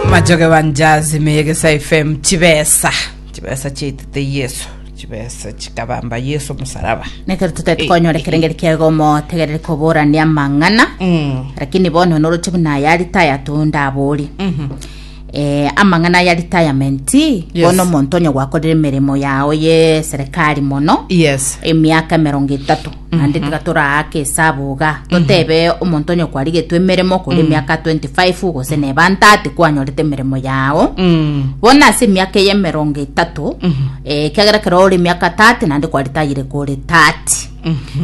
machoge banjazi meyegesa fm chibesa chibesa chiaitete yesu chibesa chikabamba yesu musaraba nekero tutari konyora ekerengeri kiago motegerere koborania amang'ana Mm. lakini bono noroche buna ayari taya tondabori Mhm. eh, amang'ana ya retirement Yes. bono omonto onye gwakorire emeremo yao ye serikali mono yes emiaka emerongo etatu naende tiga toraake esabu iga totebe omonto onye kwarigetwe emeremo kore emiaka 25 gose neba 30 kwanyorete emeremo yao Mm. bono ase emiaka eye emerongo etato eh, ekiagera kero ore emiaka 30 naende kwaritayire kore 30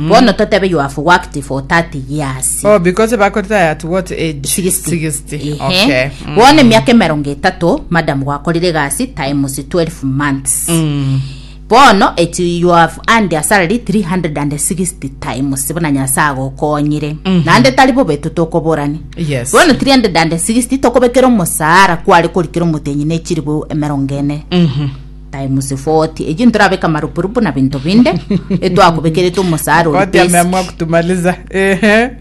bono totebe you have worked for 30 years Oh, because bakoritaya at what age? 60. 60. Ehe. Okay. Mm. bono emiaka emerongo etato madam gwakorire egasi times 12 months Mm. Bono echie Yoabu ande asarari 360 times buna Nyasae agokonyire. Naende tari bobe totokoborani. Yes. Bono 360 tokobekera omosaara kware korikera omotenyi ne chiribu emerongo ene. Times 40. Echi ntorabeka marupurupu na binto binde. Etwakobekerete omosaara ori Koti basic. ameamua kutumaliza. Ehe.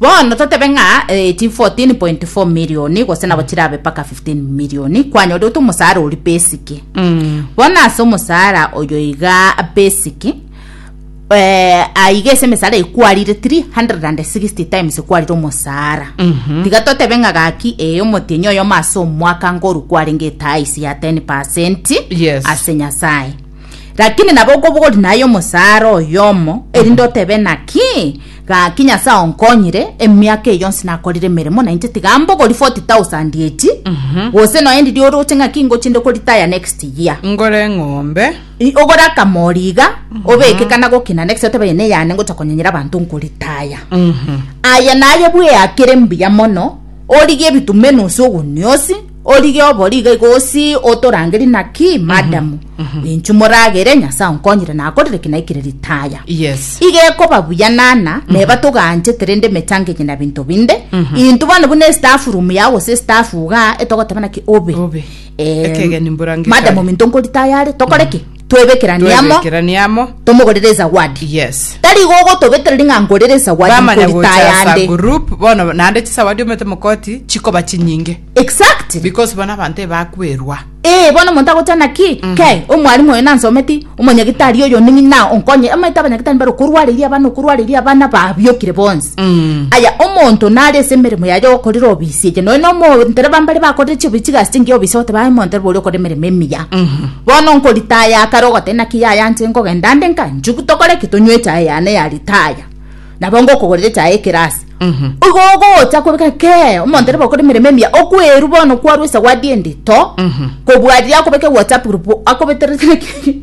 Bono totebe ng'a eh, chi 14.4 million gose nabo chirabe mpaka 15 million kwanyorete omosaara ori basic Mm. bono ase omosaara oyo iga basic eh, aiga ase emesaara eye kwarire 360 times kwarire omosaara Mhm. tiga totebe ng'a gaki ee omotienyi oyomo ase omwaka ngoru kwarenge etaisi ya 10 percent Yes. ase nyasaye lakini nabo okobogori naye omosaara oyomo erinde otebe naki Gaki Nyasae onkonyire, emiaka eye yonsi nakorire emeremo, na inche tiga mbogori 40,000 echi, gose nonya ndirie oroche ng'aki ingochi inde koritaya next year. Ngore eng'ombe. I- ogore akamori iga obeke kana gokina next otebe eye neyane ngocha konyenyera abanto nkoritaya aye naye bweakere mbuya mono origie ebitume enusu ogunia osi Orige obori iga igosi otorangerie naki madamu inchu moragere nyasae onkonyire nakorire ki naikire ritaya Yes. iga ekoba buya nana neba toganchete rende emechango enye na binto binde intu bono buna estaff room yao gose estaff iga etogoteba naki obe Obe. Eh, Ekegeni mborangekare. madam ominto nkoritayare tokore ki twebekeranie amo twebekeranie amo tomogorere ezawadi yes tari igo ogotobetereri ng'a ngorere ezawadi bamanya nkorita gocha asa yande group bono naende chisawadi omete mokoti chikoba chinyinge exactly because bono abanto ebakwerwa ee bono omonto agochana ki ke omwalimu oyo nansometi omonyagitari oyo ning'ina onkonye amaete abanyagitari mbare okorwareria abana okorwareria abana babiokire bonsi aya omonto nare ase emeremo yaye okorera obisi eche noe nomontereba mbare bakorire chiobi chigasi chingiya obisi goteba aye omontereba oria okore emeremo emiya bono nkoritaya kare ogoteba naki yaya inche nkogenda nde nka nchugu tokore ki tonywe echae yane ya ritaya nabo ngokogorera echae ekerasi igo ogocha kwebeka kee omontereba okore emeremo emiya okwerwa bono kwarwa esawadi endito kobua riria akobeka ewhatsapp group akobeterete naki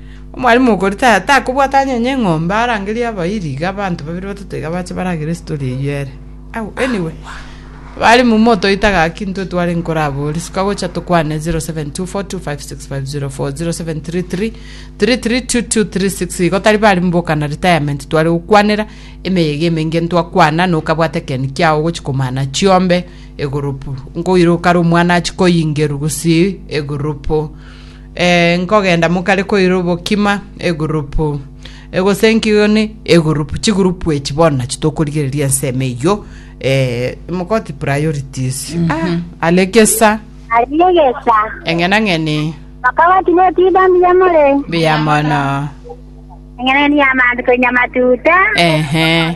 Omwalimu okoritaya takobwata anyenya eng'ombe arangerie abairi iga abanto babere batato iga bache baragere story eyio ere. Au anyway mwalimu motoite gaki intwe tware nkorabori suka gocha tokwane 0724256504 0733332236 igo tari bari mboka na retirement tware gokwanera emeyega emenge ntwakwana nokabwate ekeni kiao ogochi komana chiombe egurupu nkoire okare omwana achi koyingerwa gusii egurupu Ee, nkogenda mokare koira obokima, egurupu egosenkigwe ne egurupu, chigurupu echi bono nachi tokorigereria ensemo eyio, eh, mogoti priorities. Ah, alegesa, Aregesa. eng'enang'eni, Bakaba tinetiba mbuya more. mbuya mono. Eng'enang'eni y'amanto koinya matuta. Ehe.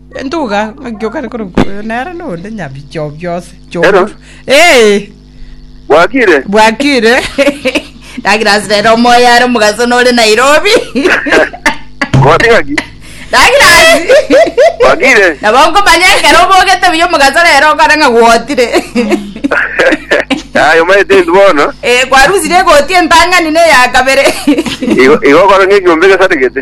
Entuga ng'aki okare korokwa oyo nere nonde nyabichi o biose Ero. ch'omotu. Eh, Bwakire. bwakire. Nagira ase rero omoyo are omogaso nore Nairobi. Ngoti ng'aki. Nagira ase. Bwakire. Nabo nkomanya ekero obogete buya omogaso rero okore ng'a gwotire. Aye omaete intu bono. Eh, kwarusire egoti entang'ani na eya kabere. Igo igo okore ng'ekiombe gesaregete.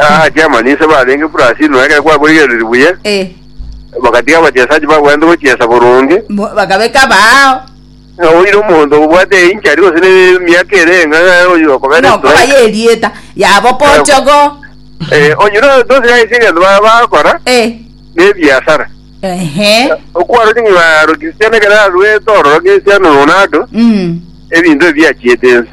Aa chairman inse barenge buna ase inwe ekero kwakorigereretie buya Eh, bagatiga abachesaji bagwenerete gochiesa boronge bo- bakabeka baao ng'a oire omonto obwate einchari gose ne miaka ere ng'a ng'a oyo okobera nokoba strike yerieta yabo pochogo eh onye no tosiga ase egento ba- bakora Eh, ne biasara ehe okwaro ng'a rokisiana ekero arwete ororo gesiano Ronaldo Mm. ebinto ebi biachiete ense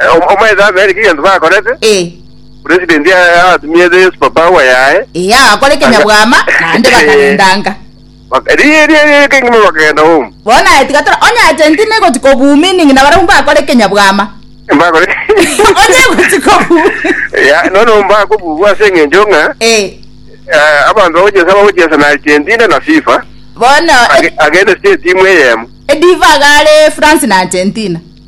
Eh, om- omaete abere ki gento bakorete Eh, president ya- atumiete yesu papa awa yaye eh, agakora ekenyabwama naende bakarendanga Bak- ri- ri- ri- kengima bakagenda home bona etigatora onye argentina egoti kobumining na barabwo bakora ekenyabwama mbakore onye egoti kobu ya nono mbakobugwa ase eng'encho ng'a Eh, eh, abanto bagochesa bagochesa na argentina na fifa bono Age- agende state imwe eyemo ediva gare france na argentina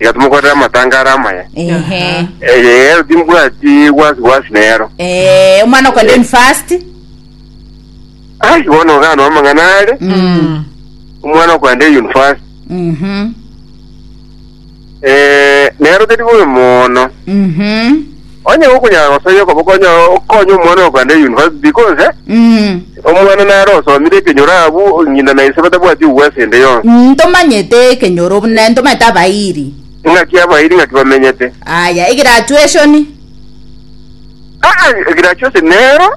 igatumokorera amatangare amaya. Ehe. Eyero timbwati gwasi gwasi nero. Eh, omwana okende university. Ai, bono ogano amang'ana are, Mm. omwana okwenda eyunifasi. Mhm. Eh, nero teri bobe mono. Mhm. Onye gokonyara gosoyia okoboko onyare okonye omwana oyo kogenda eyunivasiti, iko nse? Omwana nare osomire ekenyoro abwo, ng'ina na ise batabwati ogwesa ende yonsi. Ntomanyete ekenyoro buna ntomanyete abairi. Ng'aki abairi ng'aki bamenyete? Aya, egirachueshoni. Aa, egirachueshoni nero.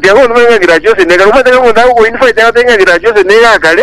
Tiagotumia ng'a egirachueshoni nekare. Omanyete ng'a omonto agokoyunifaiti agoteba ng'a egirachueshoni nigo akare?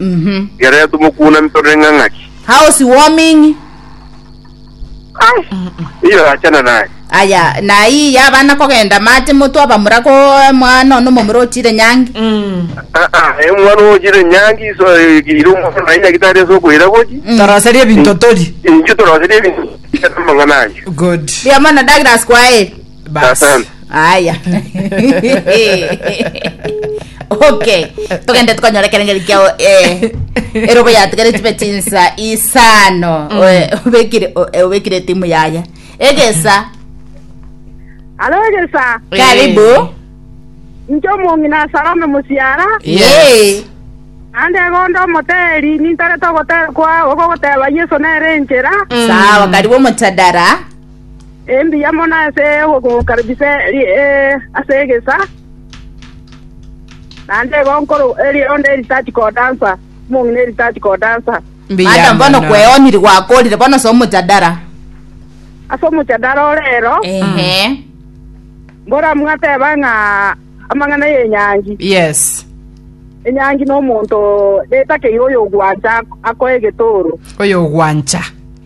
Mhm. Riarenge tomokuunami tore ng'ang'aki. House warming. Ai, iyo achana naye. Aya, na iyi yabana kogenda mate motu abamura ko mwana ono momura ochire nyangi. Mm. Ah, ah, eh, omwana ochire nyangi iso ire omwana naye nyagitari ase okoira gochi. Mm. Toroserie ebinto tori. Inche toroserie ebinto amang'ana ayo. Good. Ria mono Douglas kwaeri. basi Asante. aya okay togende tukonyora kerengeri kiao eh, erobo yatigare chibe chinsa isano Oe- obekire o- eh, obekire timu yaya egesa Alo egesa, karibu inche omongi na Salome musiara, Yes. ande gondo omoteri, nintarete ogotera kwa ogogoteba Yesu nere enchera. sawa karibu omochadara Embuya mono ase ogokomokaribisa ase egesa, naende igo nkoro erionda eritati kodansa, omong'ina eritati kodansa. Mbuya Madam, bono mono. kweoniri gwakorire bono ase omojadara. Ase omojadara ore ero, Ehe. mbora mwateba ng'a amang'ana y'enyangi, Yes. enyangi nomonto retakeire oyogwancha akoe egetoro. Oyo ogwancha.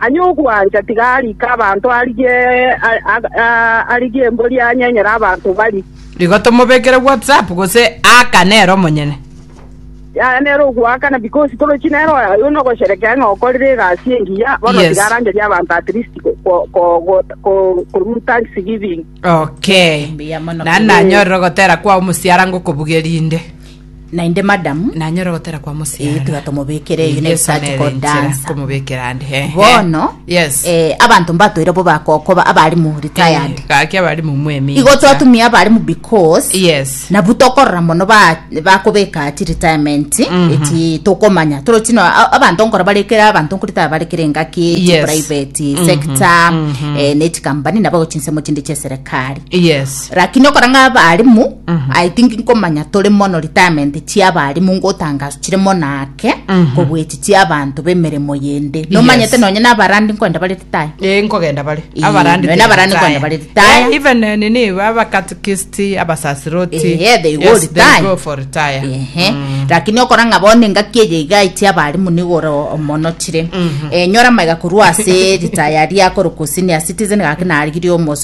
Aye ogwancha tiga arike abanto arigie arigie embori anyenyere abanto barie. Igo tomobekere WhatsApp gose aaka nere omonyene. Yaya nere ogoakana because torochi nere oyo aye onogosherekea ng'a okorire egasi engiya bono Yes. tiga arangerie abanto at least ko- ko- ko- ko- ko- korwa thanksgiving. Okay. Mbuya mono. Nani nanyorire ogotera kwao mosiara ngokobugeria inde. Naende madam, Nanyore gotera kwa mosiara. Eh, tiga tomobekere Yesu next time nere kodansa. nchera komobekera ande. He, he. bono Yes. eh, abanto mbatoire bo bakokoba abarimu retired Eh, Gaki abarimu mwemi. igo twatumia abarimu because Yes. nabu tokorora mono ba- bakobeka ti retirement eti tokomanya toro chino a- abanto nkora barekere abanto nkorita barekere engaki ti Yes. private sector eh, ne chikambani nabo chinsemo chinde chia serikali Yes. lakini okora ng'a abarimu i think nkomanya tore mono retirement chia abarimu ngotangaso chire mono ake kobwechi chia abanto b'emeremo yende nomanyete nonye nabarandi nkwenda bare retire Eh, nkogenda bare Eh, abarandi nonya abarandi kwenda bare retire. Eh, even eh, nini abakatikist abasasiroti Eh, yeah, they go yes, they retire. go for retire Ehe. lakini okora ng'a bono engaki eye iga ichia abarimu nigore omono chire Eh, nyora maiga korwa ase ritaya riakoro gose nia citizen gaki narigirie omoso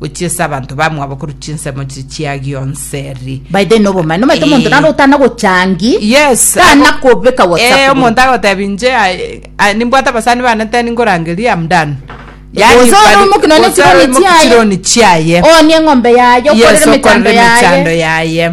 gochia ase abanto bamwabo korwa chinsemo chiria chia gionseri by the way, nobomani nomanyete omonto Eh. naro otana gochangi yes tana abo- kobeka Eh, whatsapp omonto agotebi nche I- I- nimbwate abasani bane teni ngorangeria am done Gose ore omokino ne chironi chiaye. chironi chiaye onie eng'ombe yaye Yes, okorere mechando okorere mechando yaye yaye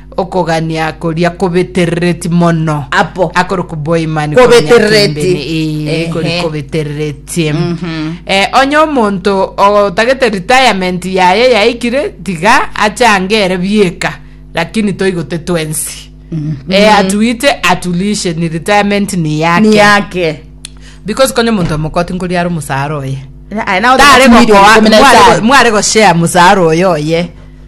Okogania koria kobeterereti mono. Apo. Akore kuboimani Kobeterereti. Ee, kori Ehe. kobeterereti. Eh, onye omonto otagete retirement yaye yaikire tiga achange ere bieka lakini toigote twensi eh, atuite atulishe ni retirement ni yake, Ni yake. because konye omonto omokoti nkori are omusara oye Aye nawe tare otakumiriria gokoa- komena mware go- etari. mware goshare musara oyo oye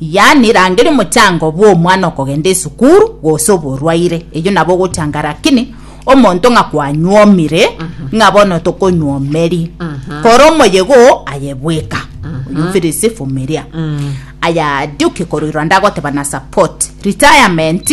Yaani rangeria omochango bw'omwana okogenda esukuru gose oborwaire, eyio nabo ogochanga rakini omonto ng'a kwanyuomire ng'a bono tokonyuomeri kora omoyega oo aye bweka oyomfirisi vumilia aya duke koruirwa ndagoteba na support retirement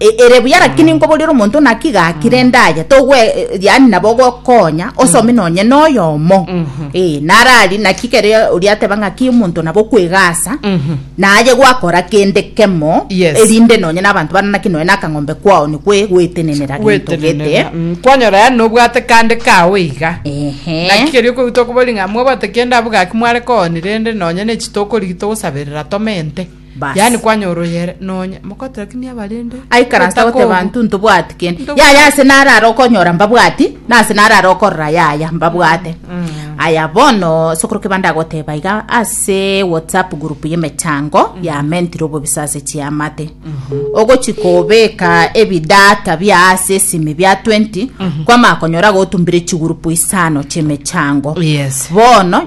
Ere buya, lakini nkoboria ore omonto naki gakire endaye togwe yani nabo ogokonya osome nonye noyomo eh narari naki kere oria ateba ngaki omonto nabo kwegasa naye gwakora kende kemo Yes. erinde nonye nabanto bana naki noe nakang'ombe kwao nikwe gwetenenera gento gete gwetenenera Mm, kwanyora yani nobwate kande kao iga ehe naki keria okoigwa tokobori ng'a mwabwate kende abwo gaki mware kooni rende nonye nechi tokorigi togosaberera tomente Yaani Baas. kwanyora oyere nonya mokotorakinia abarende Aikaransa goteba obotakobu. banto ntobwati kende. Ntobu- Yaya ase narare okonyora mbabwati, nase narare okorora yaya mbabwate. Aya bono sokoro kebande agoteba iga ase WhatsApp group y'emechango ya mentire obobisa ase chiamate. Ogochi kobeka ebidata bia ase esimi bia 20 kwamanya konyora gotumbire chigroup isano chi'emechango. Yes. Bono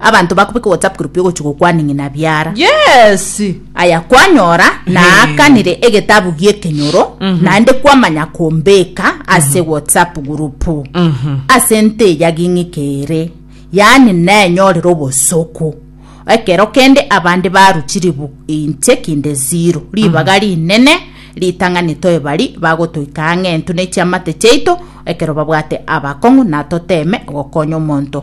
Abanto bakobeka WhatsApp group yogochia gokwaning'ina biara. Yes. Aya kwanyora naakanire egetabu gi'ekenyoro mhm. naende kwamanya kombeka ase mhm. WhatsApp group mhm. ase nteya ging'ike ere yaani nenyorire obosoku ekero kende abande baruchiri inche kinde zero ribaga rinene ritang'ani toebari bagotoika ang'entu ne chiamate chiaito ekero babwate abakong'u natoteme gokonya omonto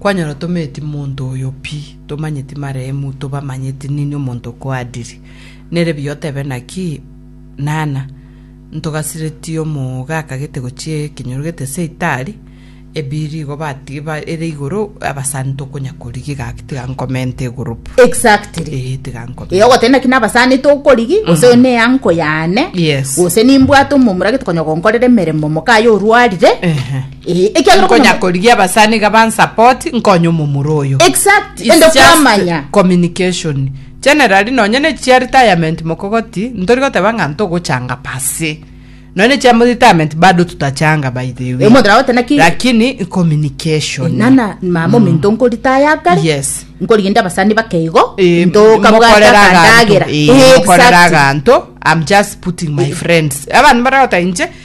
Kwanyora tometi monto oyo pi, tomanyeti maremu, tobamanyeti nini omonto okoadiri. Nere buya otebe naki, Nana, ntogasireti omooga akagete gochia ekenyoro gete ase itaari, ebiiri igo bati ba ere igoro, abasani tokonya korigia gaki tiga nkomente egurupu. Exactly. Eeh tiga nkomente. Eh, ogoteba naki nabasani tokorigi gose oyo ne uncle yane Yes. gose nimbwate omomura gete konya gonkorera emeremo moka aye orwarire Ehe. Eh, ekiagera okonya- nkonya korigia abasani iga bansapoti nkonye omomura oyo Exact, It's ende just kwamanya. communication generally nonye ne chia retirement mokogoti ntori goteba ng'a ntogochanga pase nonye ne chia mo- retirement bado tutachanga by the way Omonto nagote naki- lakini communication nana mama ominto nkoritaya kare Yes. nkorigende abasani bakeigo Eh, ntoka bwata mokorera aganto. kandagera Eh, mokorera aganto i'm just putting my friends abantu baragota inche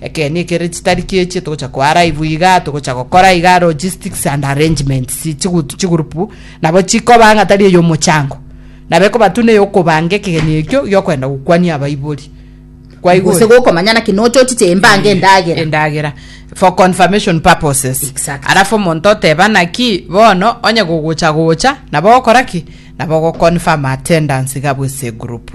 Ekeene ekere chitari ki'echio togocha koa live iga, togocha gokora iga logistics and arrangements chigut chigroup nabo chikoba ng'a tari ey'omochango, nabo ekoba tuna ey'okobanga ekegeni ekio gi'okoenda gokwania abaibori. Kwaigwa? Gose gokomanya naki nochochiche embange endagera. endagera for confirmation purposes Exactly. alafu omonto oteba naki bono onye gogocha gocha nabo ogokora ki nabo ogoconfirm attendance iga bw'ase egroup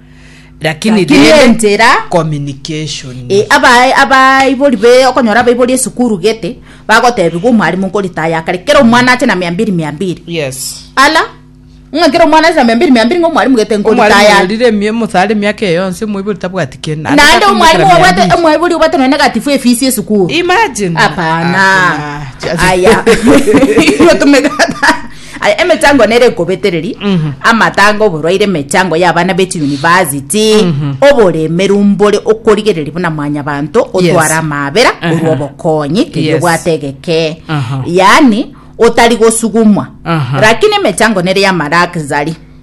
Lakini Lakini rende enchera communication. E, aba- abaibori be okonyora abaibori esukuru gete bagotebigwa omwarimu nkoritaya akare kera omwana ache na mia mbiri mia mbiri Yes. ala ng'a kera omwana ache na mia mbiri mia mbiri ng'a omwarimu gete Omwarimu nkoritaya orire emie- mosare emiaka eyo yonsi omoibori tabwati kende. Naende naende akumekera omwarimu mia obwate mbili. omwaibori obwate nonye negatifu efisi esukuru Imagine. hapana Hakuna. aya Iyo tumekata. Aye emechango nere ekobetereri amatanga oborwaire emechango y'abana be chiyunivasiti oboremeru mbore okorigereria buna mwanyabanto otwara amaabera orwa obokonyi keria Yes. obwate egeke Aha. yaani otari gosugumwa Aha. lakini emechango nere y'amalaxari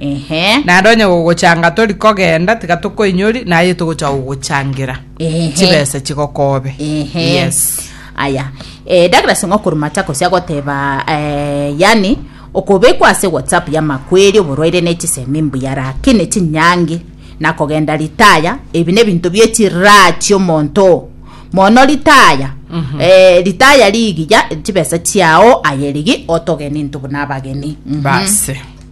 Ehe. Naende onye gogochanga tori kogenda, tiga tokoinyori, naye togocha gogochangera Ehe. chibesa chigokobe. Ehe. Yes. aya eh, Douglas Ng'okuru Machakos agoteba eh, yani okobekwa ase whatsapp ya makweri oborwaire ne chisemi mbuya rakini chinyangi na kogenda ritaya ebi nebinto bie chiraha chiomonto mono ritaya mm-hmm. eh, ritaya rigiya chibesa chiao aye rigi otogeni ntubu nabageni mm-hmm. Base.